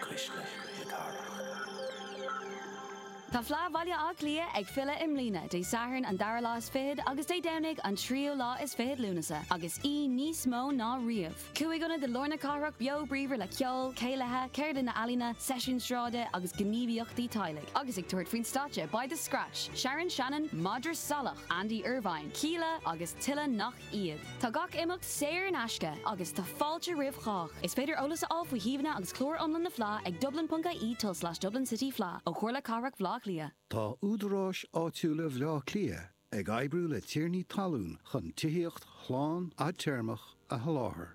Cuisle na Cathrach. Tá Fleadh Bhaile Átha Cliath ag filleadh i mbliana, Dé Sathairn an dara lá is fichead agus Dé Domhnaigh an tríú lá is fichead Lúnasa, agus í níos mó ná riamh. Cúig ionad i lár na cathrach beo bríomhar le ceol, céilithe, ceardlanna ealaíona, seisiúin sráide agus gníomhaíochtaí teaghlaigh, agus ag tabhairt faoin stáitse beidh The Scratch, Sharon Shannon, Madra Salach, Andy Irvine, Kíla agus tuilleadh nach iad. Tá gach imeacht saor in aisce agus tá fáilte roimh chách. Is féidir eolas a fháil faoi shuíomhanna agus clár iomlán na Fleá ag dublin.ie tul slash Dublin City Fleá ó Chomhairle Cathrach Bhleá Cliath. Tá Údaráis Áitiúla Bhleá Cliath ag oibriú le tiarnaí talún chun tithíocht shlán fhadtéarmach a sholáthar.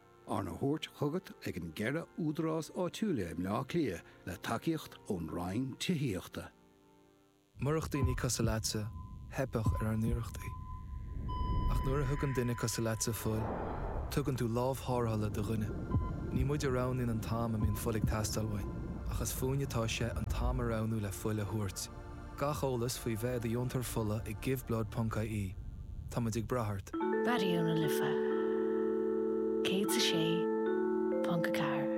Arna thabhairt chugat ag an gceithre údarás áitiúil i mBleá Cliath le tacaíocht ón Roinn Tithíochta. Murach daoine cosúil leatsa, theipfeadh ar ár n-iarrachtaí. Ach nuair a thugann duine cosúil leatsa fuil, tugann tú lámh tharrthála do dhuine. Ní muid a roghnaíonn an t-am a mbíonn fuil ag teastáil uainn, ach is fúinn atá sé an t-am a roghnú le fuil a thabhairt. Gach eolas faoi bheith i do dheontóir fola ag Giveblood.ie. Táimid ag brath ort. Raidió na Life 106.4.